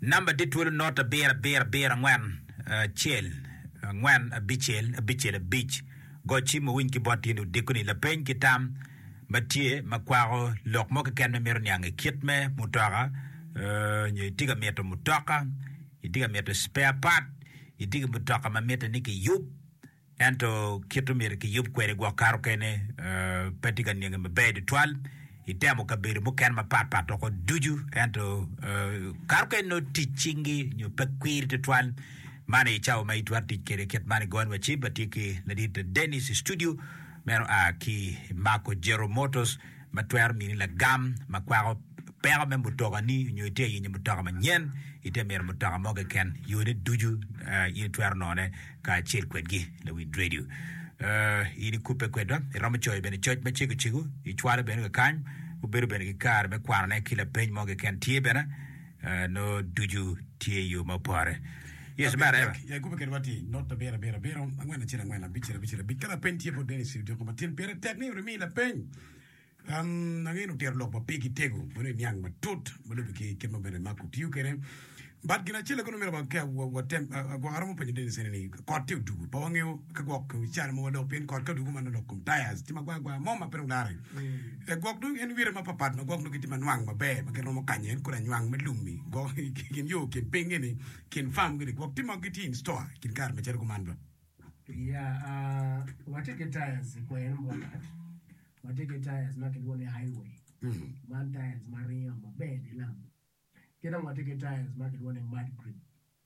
Namba dit twolo not abiro abiro abiro angwen acel angwen abicel abicel abic. Go cim wuwiny ki bot in odiko ni lapeny ki tam ma tye ma kwako lok mo keken ma imito niange kit me mutoka nyo itye ka mito mutoka, itye ka mito spare part, itye ki mutoka ma mitte ni kiyub Ento kit omyero kiyub kwede gwok kato kene pe tye ka nenge maber tutwal. Itemo kabedo mukene mapat pat doko ducu, ento kato kene nongo tic cingi nyo pe kwiri tutwal. Man aye cawa ma itwero tic kwede kit man i got wa cip. Atye ki ladit Dennis i studio, meno a ki Marco Gero Motors. ma twero mini lagam ma kwako peko me mutokani nyo ite yenyo mutoka manyen, ite mito mutoka mo keken, yone ducu in itwero none kacel kwedgi. Lawind redio, in ikubbe kwedwa, iromo coyo bene coc ma cegocego, icwalo bene kakany, wubedo bene ki kare me kwanone ki lapeny mo keken tye bene. Ah, nongo ducu tye yo ma opore. Yes, Abira, mareba. yak, yak ikube kedwa ati, not abiro, abiro, abiro, angwen acel, angwen, abicel, abicel, abic. Ka lapeny tye bot Dennis odyoko matin, pire tek ni rimii lapeny. Um, angeyo ni otito lok ma pigi tego, meno i niang matut, ma lubbe ki kit ma bene Mark otiyo kwede. But gin acel kono myero wa- ka wa- watem, ah, ah, gwok aromo penyo Dennis ene ni, kot tye odugu, pe wangeyo ka gwok calo ma walok, pien kot ka odugu man olok kom tires, tye magwar gwar mo ma pe dong lare. I gwok dong en wire mapapat ma gwok dong gitye ma nwang maber ma gin romo kanye en kodi anywang me lum-mi gwok i kin yo kin pingngi-ni kin farm gi-ni gwok tye ma gitye in store i kin kare macalo kuman dong. Ya, aa, watye ki tires i kwer mo tat, watye ki tires ma kilwongo ni Highway, man tires ma ringo maber dilam. Ki dong watye ki tires ma kilwongo ni Mudgrip,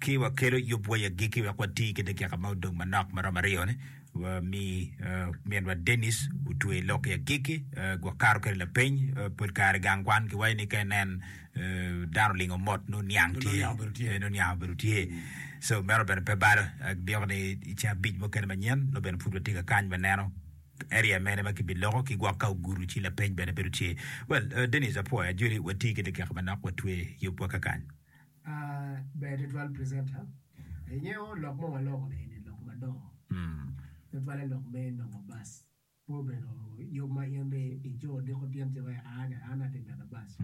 ki wakelo yub wa i agikki wek wati ki dakika ma odong manok ma romo aryo-ni, wami minwa Dennis otwe lok i agikki, wakato kwede lapeny. Pol kare gang kwan kiwaco ni ka inen dano olingo mot nongo niang tye, nongo niang obedo tye. So meno bene pe balo, abyeko ni i ceng abic mukene manyen nongo bene pud watye ka kany me neno area mene ma kibiloko ki gwok ka ogudo ci lapeny bene bedo tye. Well, Dennis apwoyo ajoli, wati ki dakika manok watwe yub wa kakany. Ber tutwal presenter ingeyo lok ma waloko ni eni lok madongo tutwale lok me nongo bus pe obedo yub ma in ni ico diko tyen ci iwaci aa ni an atye medo bus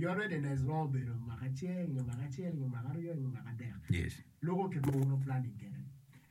your readiness romo bedo mwaka acel nyo mwaka acel nyo mwaka aryo nyo mwaka adek loko ki romo wunu planning kede.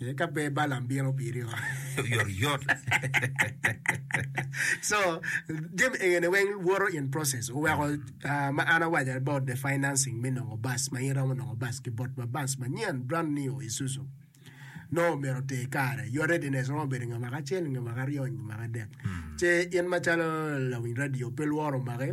Ee, ka pe Balaam bino piri oo. Oyotoyot. So, jami egene weng woto in process. Oweko ah, ma an awaco about the financing me nongo bus, ma in iromo nongo bus ki bot ma bus manyen, brand new Isuzu. Nongo omyero oter kare. Your readiness romo bedo nge mwaka acel, nge mwaka aryo, nge mwaka adek. Ce in macalo lawiny radio, pe lworo omaki,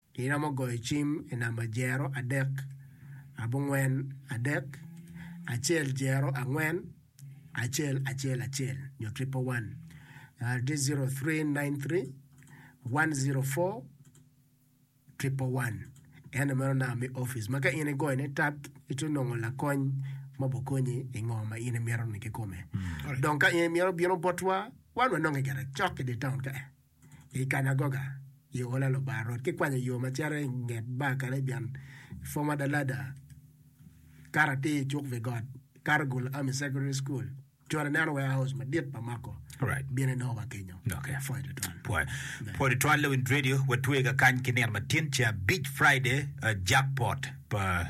Iromo goyo cim i namba jero adek abongwen adek acel jero angwen acel acel acel nyo triple one tye zero three nine three one zero four triple one ene meno namba me opic ma ka in igoyo ne tap itwero nongo lakony ma obokonyi i ngo ma in imito ni kikome dong ka in imito bino botwa wan wanonge gire cok idye taun ka en. I kanagoga i ola Lubanga rwot ki kwanyo yo ma cito i nget bar Karibian, Former Da Ladder kato atir i cuk wi got, kato Gulu Army Secondary School, cwalo ineno warehouse madit pa mako Alright. bino inongo wa kenyo. Okay. Pwoyo tutwal. Pwoyo. Pwoyo tutwal Lewin Radio watwega kany ki nino matin ca Beach Friday uh, jackpot pa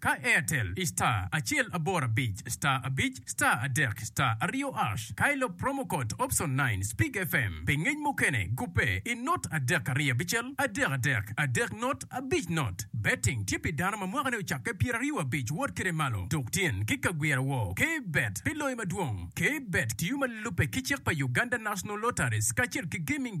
Ka Airtel i star acel aboro abic star abic star adek star aryo ash ka ilop promo code option nine speak FM pi ngec mukene gubbe i not adek aryo abicel adek adek adek not abic not Betting tye pi dano ma mwakane ocakke pyeraryo abic wot kede malo tuk tyen ki ka gwira woo K Bet pi loyo madwong K Bet tiyo ma lubbe ki cik pa Uganda National Lotteries kacel ki Gaming